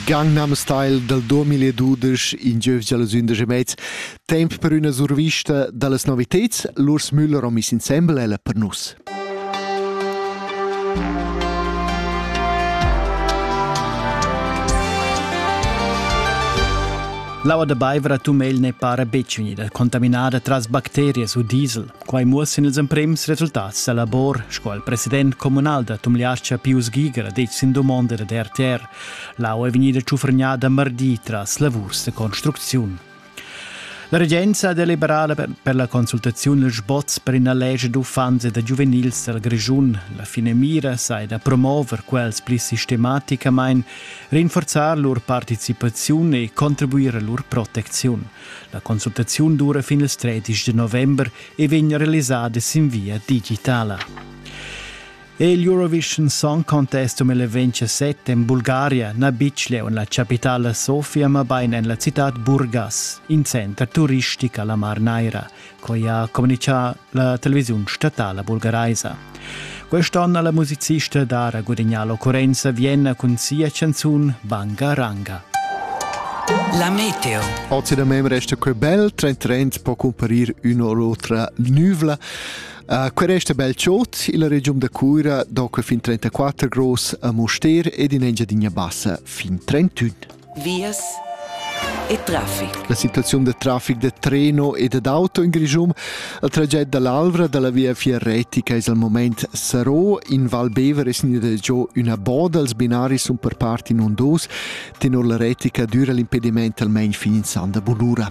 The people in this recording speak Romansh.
Gangnam Style dal 2012 in giövgia las undisch e mez temp per üna survista da las noviteds Lurs Müller ho miss insembel ella per nus. L'aua da Baiver a Tumegl ne para betg unida, contaminada tras bacterias u diesel. Quai muossan ils emprems resultats da labor sco il president communal da Tumliascha Pius Giger ha detg sin dumonda da RTR. L'au è vegnida tschufregnada mardi tras lavurs da construcziun. La regenza ha deliberada per la consultaziun dal sboz per ina legge d'uffants e da giuvenils dal Grischun. La finamira sai da promover quels pli sistematicamain, rinforzar lur participaziun e contribuir a lur protecziun. La consultaziun dura fin il 13 de november e vegn realisada sin via digitala. E il Eurovision Song Contest um il 27 en Bulgaria na bitg leu en la capitala Sofia, ma bain en la citad Burgas, in center turistic alla Mar Naira. Quai ha communitgà la televisiun statala bulgaraisa. Quest'onn ha la musicista da gudagnare l'occurrenza Vienna cun sia canzun Banga Ranga. La meteo. Oggi da me resta quel bel trend trend può comparir una o l'altra nuvla. Uh, quel resta bel ciot illa regiun da Cuira, dopo fin 34 gross a Moster ed in Engiadina Bassa fin 31. vias e traffic. La situaziun da traffic da treno e dad auto in Grischun. Il traged dall'Alvra dalla viafier retica es al moment Sarò. In Val Bever es gnida giò üna boda. Els binaris sun per part in on dos. Tenor la retica düra l'impediment almain fin in san da bunura.